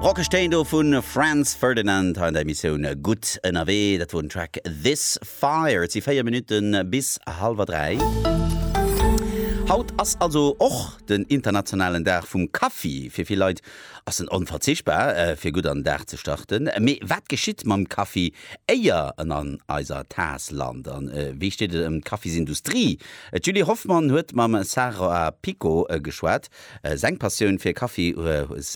Rockeg Téin do vu Franz Ferdinand hei an der Emissioun Gutt ënnerwee. Dat wor den Track This Fire. Et si 4 Minutte bis hallwer 3. Haut ass also och den internationalen Dag vum Kaffi. Fir vill Leit ass en onverzichtbar, fir gutt an den Dag ze starten. Mee wat geschitt mam Kaffi, éier en an eiser Taass lant? A wéi steet et ëm d'Kaffisindustrie? D'Julie Hoffmann huet mam Sarah Picot geschwat. Seng Passioun fir Kaffi,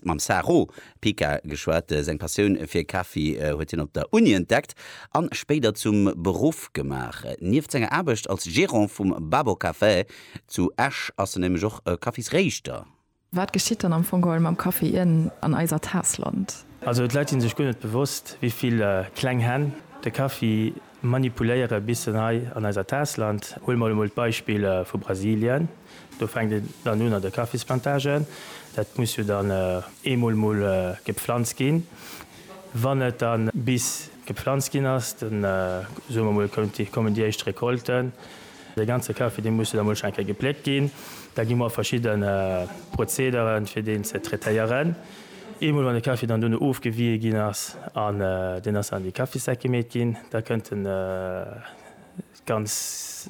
mam Saro Pica geschwat, seng Passioun fir Kaffi huet hien op der Uni entdeckt an spéider zum Beruff gemaach. Nieft senger Aarbecht als Gerant vum Babo Café zu Esch ass en nämlech och Kaffisréischter. Wat geschitt dann am Fong geholl mam Kaffi ieren an eiser Taass lant? Also d'Leit si sech guer net bewosst, wéi vill kleng Hänn de Kaffi manipuléiere bis en hei an eiser Taass lant. Huele mer emol d'Beispill vu Brasilien, do fänkt een dann un an de Kaffisplantagen, dat muss jo dann eemol mol gepflanzt ginn. Wann et dann bis gepflanzt ginn ass, da soe mer mol kommen déi éischt Recolten, de ganze Kaffi dee muss jo da mol scho eng Kéier gepléckt ginn, da gi mer verschidde Prozedere fir deen ze traitéieren. Eemol wann de Kaffi dann duerno ofgewië ginn ass an deen ass an déi Kaffissäck gemeet ginn, da kënnt de ganz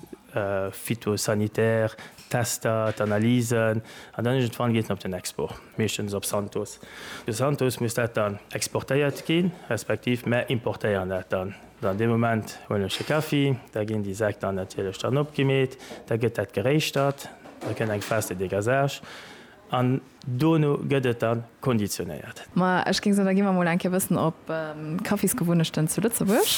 phytosanitär Tester, d'Analysen an dann iergendwann geet en op den Export, meeschtens op Santos. Zu Santos muss dat dann exportéiert ginn, respektiv mär importéieren dat dann. An dee Moment huelen ech de Kaffi, da ginn déi Säck dann natierlech dann opgemeet, da gëtt dat geréischtert, da kënnt eng Phase de dégazage. An dono gëtt et da konditionéiert. Ma ech géing soen, da gi mer emol eng Kéier e bëssen op d'Kaffisgewunnechten zu Lëtzebuerg.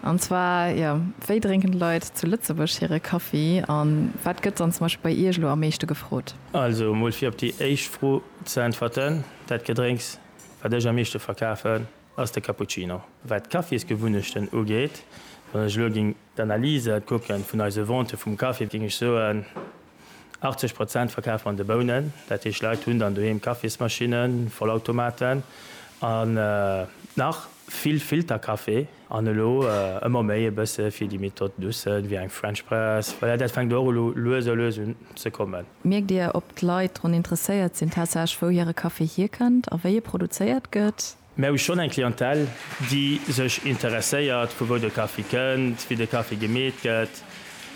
An zwar, jo, wéi drénken d'Leit zu Lëtzebuerg hire Kaffi? A wat gëtt dann zum Beispill bei Iech elo am meeschte gefrot? Also emol fir op déi éischt Fro ze äntwerten, Dat Gedrénks, wat ech am meeschte verkafen, ass de Cappuccino. Wat d'Kaffisgewunnechten ugeet, wann ech elo géing d'Analyse kucken vun eise Vente vum Kaffi, géing ech soen, 80 Prozent verkafe mer an de Bounen. Dat heescht, Leit hunn dann doheem Kaffismaschinnen, Vollautomaten an nach vill Filterkaffee an elo ëmmer méi e bësse fir déi méi tot douce wéi eng French Press. Voilà, dat fänkt och elo lues a lues un ze kommen. Mierkt Dir, ob d'Leit drun interesséiert sinn tatsächlech, wou hire Kaffee hierkënnt a wéi e produzéiert gëtt? Mär hu schonn eng Clientèle, déi sech interesséiert, vu wou de Kaffi kënnt, wéi de Kaffi gemeet gëtt.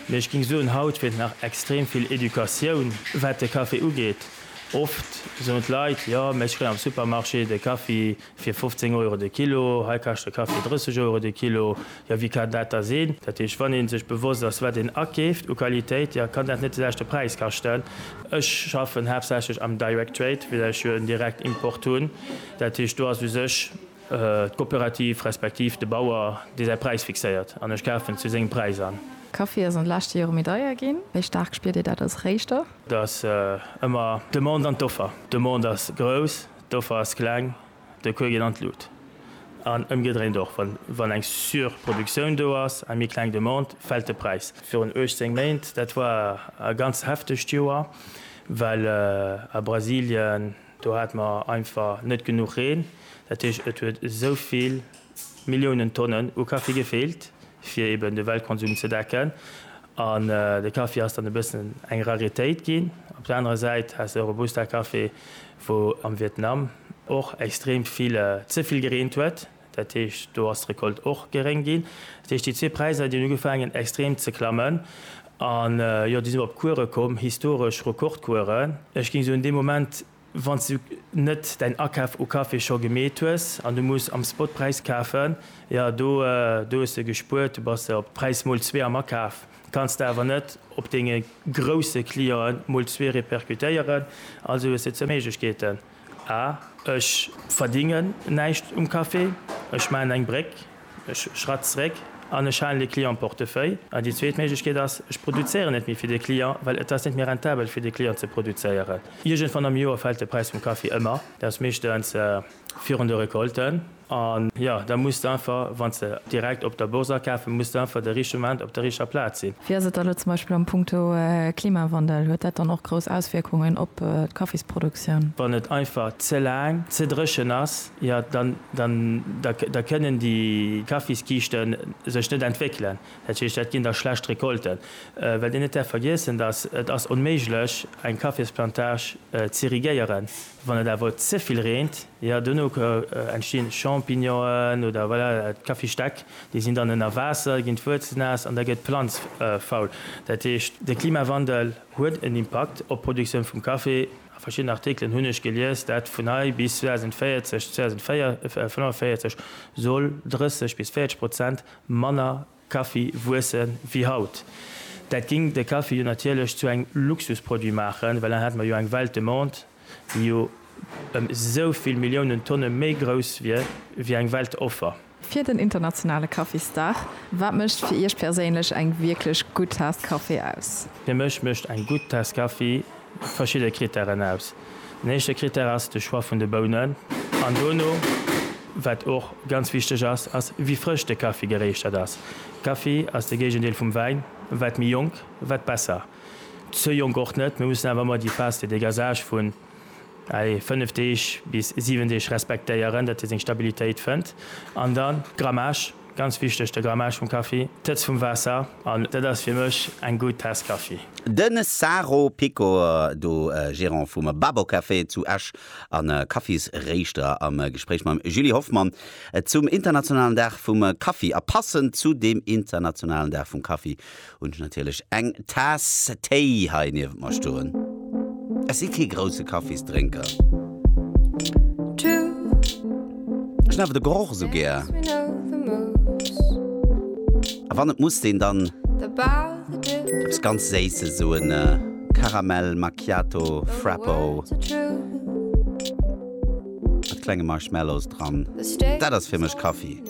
Mee ech géing soen, haut feelt nach extrem vill Educatioun, wat de Kaffi ugeet. Oft soen d'Leit, jo, mä ech kréien am Supermarché de Kaffi fir 15 Euro de Kilo, hei kascht de Kaffi 30 Euro de Kilo. Jo, wéi kann dat da sinn? Dat heescht, wann ee sech bewosst ass, wat een akeeft u Qualitéit, jo, kann dat net de leschte Präis kaschten? Ech schaffen haaptsächlech am Direct Trade, well ech jo en Direktimport hunn. Dat heescht, do ass u sech d'Coopérative respektiv de Bauer, dee säi Präis fixéiert an ech kafen zu sengem Präis an. Kaffi ass an de leschte Jore méi deier ginn. Wéi staark spiert Dir dat als Réischter? Dat ass ëmmer d'Demande an d'Offer. D'Demande ass grouss, d'Offer ass kleng, de Kuer geet an d'Lut. An ëmgedréint och, wann eng Surproduktioun do ass, eng méi kleng Demande, fält de Präis. Virun 18 Méint, dat war e ganz heftegt Joer, well a Brasilien, Do hate mer einfach net genuch Reen. Dat heescht, et huet esou vill Milliounen Tonnen u Kaffi gefeelt, fir eben de Weltkonsum ze decken. An de Kaffi ass dann e bëssen eng Raritéit ginn. Op der anerer Säit has de Robusta-Kaffi, wou am Vietnam och extrem vill ze vill gereent huet. Dat heescht, do ass d'Recolte och geréng ginn. Dat heescht, déi zwee Präisser, déi hunn ugefaangen extrem ze klammen. A jo, déi sinn och op Kuere komm, historesch Rekordkueren. Ech géing soen, dee Moment, wann s du net däin Akaf u Kaffi scho gemeet hues an du muss am Spotpräis kafen, jo, do hues de gespuert, du bass op Präis mol zwee am Akaf. Kanns de awer net op denge grousse Clienten mol zwee repercutéieren, also hues de zwou Méiglechkeeten. A, Ech verdingen näischt um Café. Ech maachen eng Bréck, ech schratt zréck an ech halen de Client am Portefeuille. A, Déi zweet Méiglechkeet ass, ech produzéieren net méi fir de Client, well et ass net méi rentabel fir de Client ze produzéieren. Iergendwann am Joer fält de Präis vum Café ëmmer, dat ass meeschtens virun de Recolten. A jo, da muss de einfach, wann s de direkt op der Bourse akafe muss de einfach de richtege Moment op der richteg Plaz sinn. Wéi ass et da elo zum Beispill am Punkto Klimawandel? Huet dat dann och grouss Auswierkungen op d'Kaffisproduktioun? Wann et einfach ze laang ze dréchen ass, jo, da kënnen déi Kaffiskiichte sech net entwéckelen. Dat heescht, dat ginn da schlecht Recolten. Wat een net däerf vergiessen, dass et ass onméiglech eng Kaffisplantage z'irrigéieren, wann et awer ze vill reent. Jo, dono entstinn Champignonen oder voilà, d'Kaffisstäck, déi sinn dann ënner Waasser, ginn d'Wuerzelnaass an da gëtt d'Planz faul. Dat heescht, de Klimawandel huet en Impakt op d'Produktioun vum Kaffi. A verschiddenen Artikelen hunn ech gelies, dat vun hei bis 2040, 2045 soll 30 bis 40 Prozent manner Kaffi wuesse wéi haut. Dat géing de Kaffi jo natierlech zu engem Luxusproduit maachen, well dann hätte mer jo eng Welt Demande, déi jo ëm esou vill Milliounen Tonne méi grouss wier wéi eng Welt Offer. Fir den internationale Kaffisdag, Wat mécht fir Iech perséinlech eng wierklech gutt Taass Kaffi aus? Fir mech mécht eng gutt Taass Kaffi verschidde Krittären aus. Den éischte Krittär ass de Choix vun de Bounen an dono, wat och ganz wichteg ass, ass wéi frësch de Kaffi geréischtert ass. Kaffi ass de Géigendeel vum Wäin, wat méi jonk, wat besser. Ze jonk och net, mir mussen awer ëmmer déi Phase de dégasage vun, allez, 5 Deeg bis 7 Deeg respektéieren, datt e seng Stabilitéit fënnt an dann d'Grammage. Ganz wichteg, de Grammage vum Kaffi, d'Hëtzt vum Waasser, an dat ass fir mech eng gutt Taass Kaffi. De Saro Picor, do Gerant vum Babo Café zu Esch a Kaffisréischter, am Gespréich mam Julie Hoffmann zum internationalen Dag vum Kaffi. A passend zu deem internationalen Dag vum Kaffi Hunn ech natierlech eng Taass Téi hei niewent mer stoen. Ech si kee grousse Kaffisdrénker. Ech hunn awer de Geroch esou gär. A wann et muss deen dann eppes ganz Séisses, esou en Karamell Macchiato Frappo mat klenge Marshmallows dran, dat ass fir mech Kaffi.